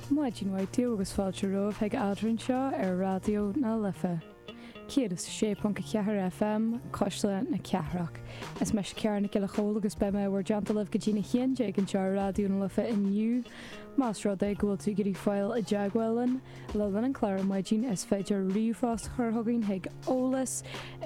Maidin mhaith daoibh agus fáilte romhaibh chuig eadrainn seo ar Raidió na Life 106.4 FM, Cuisle na Cathrach. Is mise Ciara Nic Giolla Chomhaill agus beidh mé i bhur dteannta libh go dtí na haon déag anseo ar Raidió na Life inniu. Más rud é go bhfuil tú ag iarraidh fáil i dteagmháil linn le linn an chláir ar maidin, is féidir ríomhphost a chur chugainn chuig eolas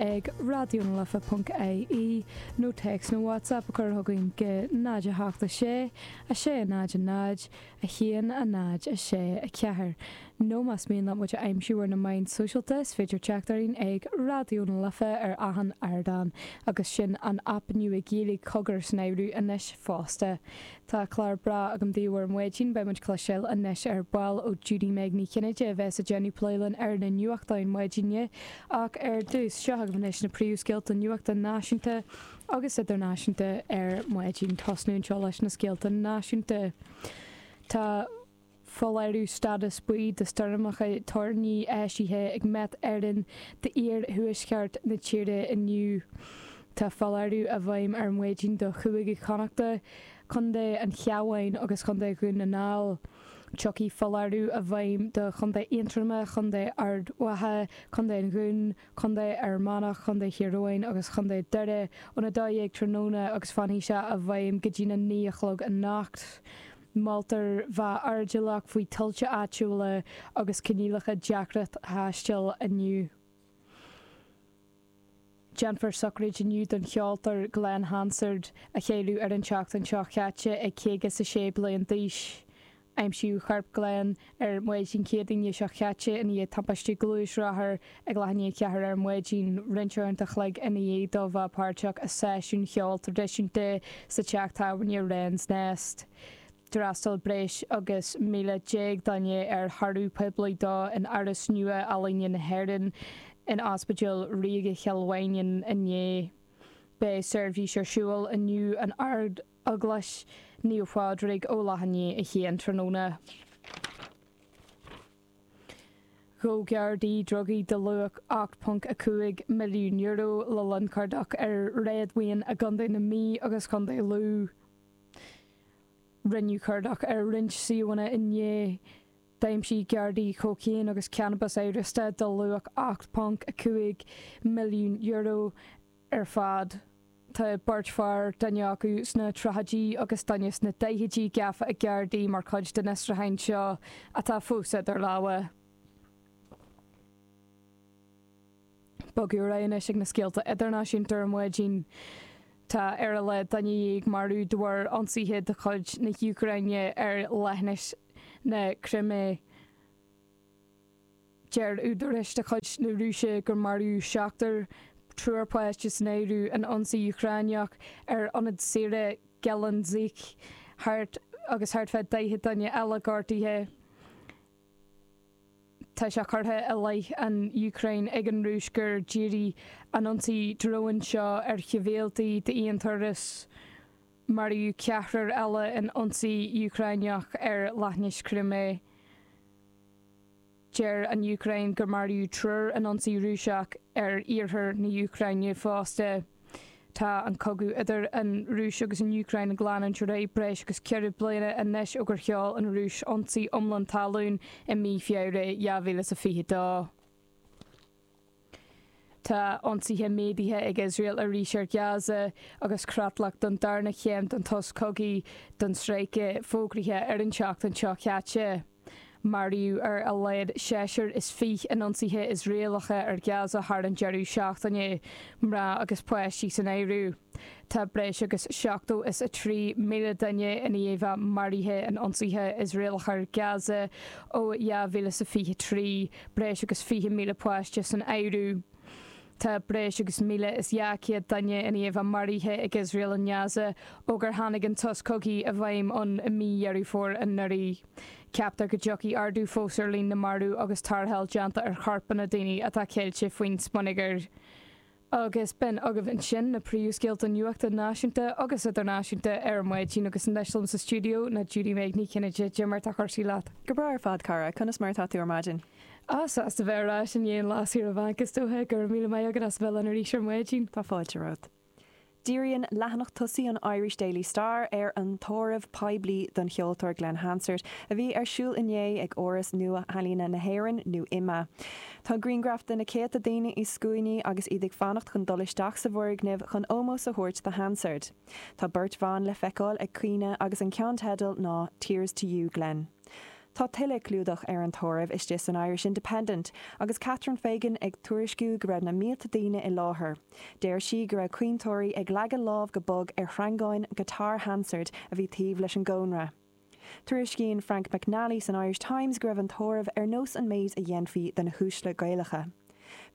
ag raidiónalife.ie nó téacs nó WhatsApp a chur chugainn go 0 8 6 6, 0, 0, 1, 0, 6, 4, Nó más mian leat muid a aimsiú ar na meáin sóisialta, is féidir teacht orainn ag Raidió na Life ar achan ardán, agus sin an aip nua Gaeilge Cogar san áireamh anois fosta. Tá clár breá agam daoibh ar maidin, beidh muid ag cloisteáil anois ar ball ó Judy-Meg Ní Chinnéide a bheas ag déanamh plé linn ar na nuachtáin maidine, ach ar dtús, seo agaibh anois na príomhscéalta nuachta náisiúnta. agus idirnáisiúnta ar maidin tosnú anseo leis na scéalta náisiúnta. Tá foláireamh stádas buí do stoirmeacha toirní eisithe ag Met Éireann d'iar-thuaisceart na tíre inniu. Tá foláireamh i bhfeidhm ar maidin do Chúige Chonnachta, Co. an Chabháin agus Co. Dhún na nGall. Tiocfaidh foláireamh i bhfeidhm do Chontae Aontroma, Co. Ard Mhacha, Co. an Dúin, Contae Fhear Manach, Contae Thír Eoghain agus Chontae Dhoire, ón 12:00 tráthnóna agus fanfaidh sé i bhfeidhm go dtí na naoi a chlog anocht. Moltar bheith airdeallach faoi thuilte áitiúla agus coinníollacha deacra taistil inniu. Déanfar sochraid inniu don cheoltóir Glen Hansard, a cailleadh ar an tseachtain seo chaite ag caoga 's a sé bliain d'aois. Aimsíodh corp Glen ar maidin Chéadaoine seo caite ina dhiaidh timpiste gluaisrothair ag leath i ndiaidh a ceathair ar maidin, roinnt uaireanta a chloig ina dhiaidh dó bheith páirteach i seisiún cheoil traidisiúnta sa teach tábhairne Wren's Nest. D'fhreastail breis agus 11,000 duine ar thórramh poiblí dó in Áras Nua-Ealaíne na hÉireann in Ospidéal Ríoga Chill Mhaighneann inné. Beidh seirbhís ar siúl inniu in Ard Eaglais Naomh Phádraig, ó leath i ndiaidh a haon tráthnóna. Ghabh gardaí drugaí de luach €8.5 milliún le linn cuardach ar réadmhaoin i gContae na Mí agus Contae Lú. Rinneadh cuardach ar roinnt suíomhanna inné. D'aimsigh gardaí cócaon agus cannabas amhrasta de luach €8.5 milliún i ar fad. Tá beirt fear, duine acu sna tríochaidí agus duine sna daichidí, gafa ag Gardaí mar chuid den fhiosrúchán seo atá fós idir lámha. Bogfaidh muid ar aghaidh anois ag na scéalta idirnáisiúnta ar maidin. Tá ar a laghad aon duine dhéag marbh de bharr ionsaithe de chuid na hÚcráine ar leithinis na Crimé. Deir údaráis de chuid na Rúise gur maraíodh seachtar, triúr páiste san áireamh, in ionsaí Úcráineach ar ionad saoire Gelendzhik agus thart fá 40 duine eile gortaithe. Tá sé curtha i leith an Úcráin ag an Rúis gur dhírigh an t-ionsaí dróin seo ar shibhialtaigh d'aon turas. Maraíodh ceathrar eile in ionsaí Úcráineach ar leithinis Chrimé. Deir an Úcráin gur maraíodh triúr in ionsaí Rúiseach ar iarthar na hÚcráine fosta. Tá an cogadh idir an Rúis agus an Úcráin ag leanúint ar aghaidh breis agus ceithre bliana anois ó gur sheol an Rúis ionsaí iomlán talún i mí Feabhra 2022. Tá ionsaithe méadaithe ag Iosrael arís ar Ghaza agus creatlach don darna chéim den tsos cogaidh don stráice fógraithe ar an tseachtain seo caite. Maraíodh ar a laghad seisear is fiche in ionsaithe Iosraelacha ar Ghaza thar an deireadh seachtaine, mná agus páistí san áireamh. Tá breis agus seachtó is a trí míle duine i ndiaidh a maraithe in ionsaithe Iosraelacha ar Gaza ó dhá mhíle is a fiche a trí, breis agus fiche míle páiste san áireamh. Tá breis agus míle is dhá chéad duine i ndiaidh a maraithe ag Iosrael i nGaza ó gur tháinig an sos cogaidh i bhfeidhm ann i mí Dheireadh Fómhair anuraidh. Ceaptar go dtiocfaidh ardú fós ar líon na marbh agus tarrtháil á déanamh ar chorpanna daoine atá ceilte faoin smionagar. Agus b'in agaibh ansin na príomhscéalta nuachta náisiúnta agus idirnáisiúnta ar maidin agus anois liom sa stiúideo ná Judy Meg Ní Chinnéide. Cad é mar tá cúrsaí leat. Go breá ar fad, a chara. Conas mar atá tú ar maidin? Ah, sásta bheith ar ais i ndiaidh an lá saoire bainc, is dócha. Go raibh míle maith agat as a bheith linn arís ar maidin. Tá fáilte romhat. Díríonn leathanach tosaigh an Irish Daily Star ar an tórramh poiblí don cheoltóir Glen Hansard a bhí ar siúl inné ag Áras Nua-Ealaíne na hÉireann, nó IMMA. Tá grianghraif de na céadta daoine i scuainí agus iad ag fanacht chun dul isteach sa bhfoirgneamh chun ómós a thabhairt do Hansard. Tá beirt bhan le feiceáil ag caoineadh agus an ceannteideal ná 'Tears to you, Glen'. Tá tuilleadh clúdaigh ar an tórramh istigh san Irish Independent agus Catherine Fegan ag tuairisciú go raibh na mílte daoine i láthair. Deir sí go raibh caointeoirí ag leagan lámh go bog ar shreangáin giotár Hansard a bhí taobh leis an gcónra. Tuairiscíonn Frank McNally san Irish Times go raibh an tórramh ar nós an méid a dhéanfaí do na huaisle Gaelacha.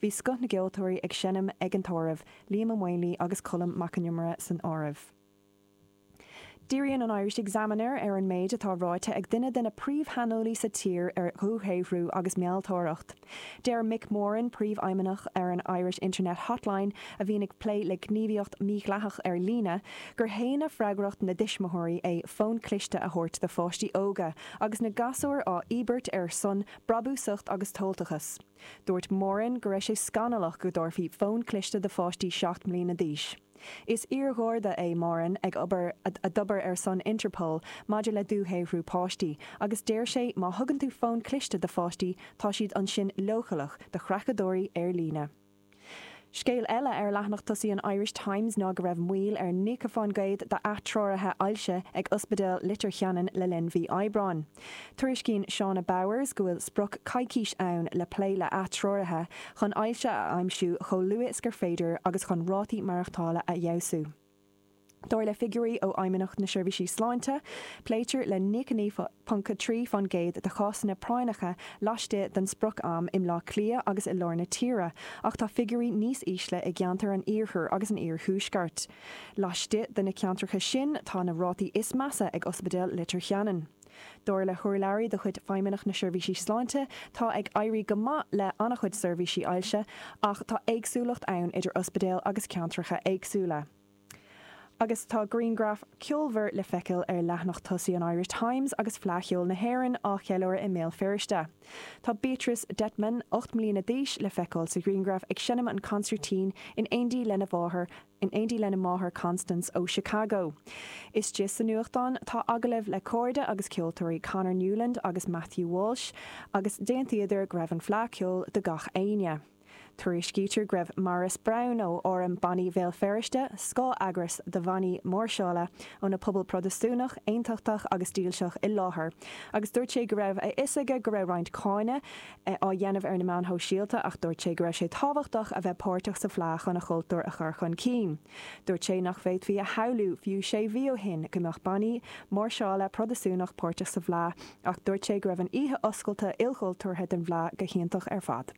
Bhí scoth na gceoltóirí ag seinm ag an tórramh, Liam Ó Maonlaí agus Colm Mac Con Iomaire san áireamh. Díríonn an Irish Examiner ar an méid atá ráite ag duine de na príomhshaineolaí sa tír ar dhúshaothrú agus mealltóireacht. Deir Mick Moran, príomhfheidhmeannach ar an Irish Internet Hotline, a bhíonn ag plé le gníomhaíocht mídhleathach ar líne, gur séanadh freagracht na dtuismitheoirí é fón cliste a thabhairt do pháistí óga, agus na gasúir á íobairt ar son brabúsacht agus tomhaltachas. Dúirt Moran go raibh sé scannalach go dtabharfaí fón cliste do pháistí seacht mbliana d'aois. Is iargharda é Moran ag obair a d'oibrigh ar son Interpol maidir le dúshaothrú páistí agus deir sé má thugann tú fón cliste do pháistí tá siad ansin leochaileach do chreachadóirí ar líne. Scéal eile ar leathanach tosaigh an Irish Times ná go raibh moill ar nócha fán gcéad d'ath-treoraithe ailse ag Ospidéal Leitir Cheanainn le linn mhí Aibreáin. Tuairiscíonn Shauna Bowers go bhfuil sprioc coicís ann le plé le ath-treoraithe chun ailse a aimsiú chomh luath is gur féidir agus chun rátaí maireachtála a fheabhsú. Dar le figiúirí ó Fheidhmeannacht na Seirbhísí Sláinte, pléitear le 99.3 fán gcéad de chásanna práinneacha laistigh den sprioc-am i mBleá Cliath agus i lár na tíre ach tá figiúirí níos ísle i gceantar an iarthair agus an iarthuaisceart. Laistigh de na ceantracha sin tá na rátaí is measa ag Ospidéal Leitir Cheanainn. Dar le hurlabhraí de chuid Feidhmeannacht na Seirbhísí Sláinte, tá ag éirí go maith le an-chuid seirbhísí ailse ach tá éagsúlacht ann idir ospidéil agus ceantracha éagsúla. Agus tá griangraf ceolmhar le feiceáil ar leathanach tosaigh an Irish Times agus Fleadh Cheoil na hÉireann á cheiliúradh i mBéal Feirste. Tá Beatrice Dettman, ocht mbliana d'aois, le feiceáil sa ghriangraf ag seinm an consairtín in éindí lena máthair, in éindí lena máthair Constance ó Chicago. Istigh sa nuachtán tá agallamh le cairde agus ceoltóirí Conor Newland agus Matthew Walsh agus d'aontaíodar go raibh an Fleadh Cheoil do gach éinne. Tuairiscítear go raibh Maurice Brown ó Fhóram Bannaí Bhéal Feirste, scáth-eagras do bhannaí máirseála ó na pobail Protastúnach, Aontachtach agus Dílseach i láthair agus dúirt sé go raibh a fhios aige go raibh roinnt cáineadh á dhéanamh ar na meáin shóisialta ach dúirt sé go raibh sé tábhachtach a bheith páirteach sa bhfleá chun a chultúr a chur chun cinn. Dúirt sé nach bhféadfaí a shamhlú fiú sé mhí ó shin go mbeadh bannaí máirseála Protastúnach páirteach sa bhfleá ach dúirt sé go raibh an oíche oscailte ilchultúrtha den bhfleá go hiontach ar fad.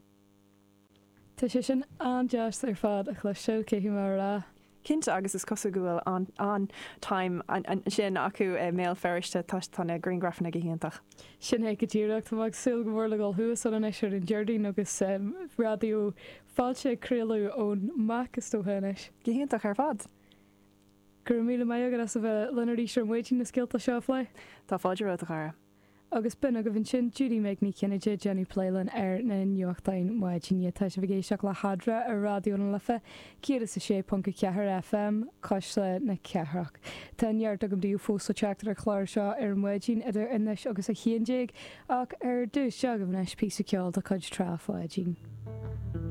Tá sé sin an-deas ar fad a chloisteáil, cén tí, mar a déarfá. Cinnte, agus is cosúil go bhfuil an-time ansin acu i mBéal Feirste toisc tá na griangrafanna go hiontach. Sin é go díreach. Tá mé ag súil go mór le dhul suas ann anois ar an Déardaoin agus Raidió Fáilte ag craoladh ón MAC, is dócha anois. Go hiontach ar fad. Go raibh míle maith agat as a bheith linn arís ar maidin na scéalta seo a phlé. Tá fáilte romhat, a chara. Agus b'in agaibh ansin Judy Meg Ní Chinnéide, ag déanamh plé linn ar na nuachtáin maidine, tá sibh ag éisteacht le hAdhradh ar Raidió na Life 106.4 FM, Cuisle na Cathrach. Tá neart agam daoibh fós le teacht ar an chlár seo ar maidin idir anois agus a haon déag, ach ar dtús, seo agaibh anois píosa ceoil de chuid Trá Pháidín.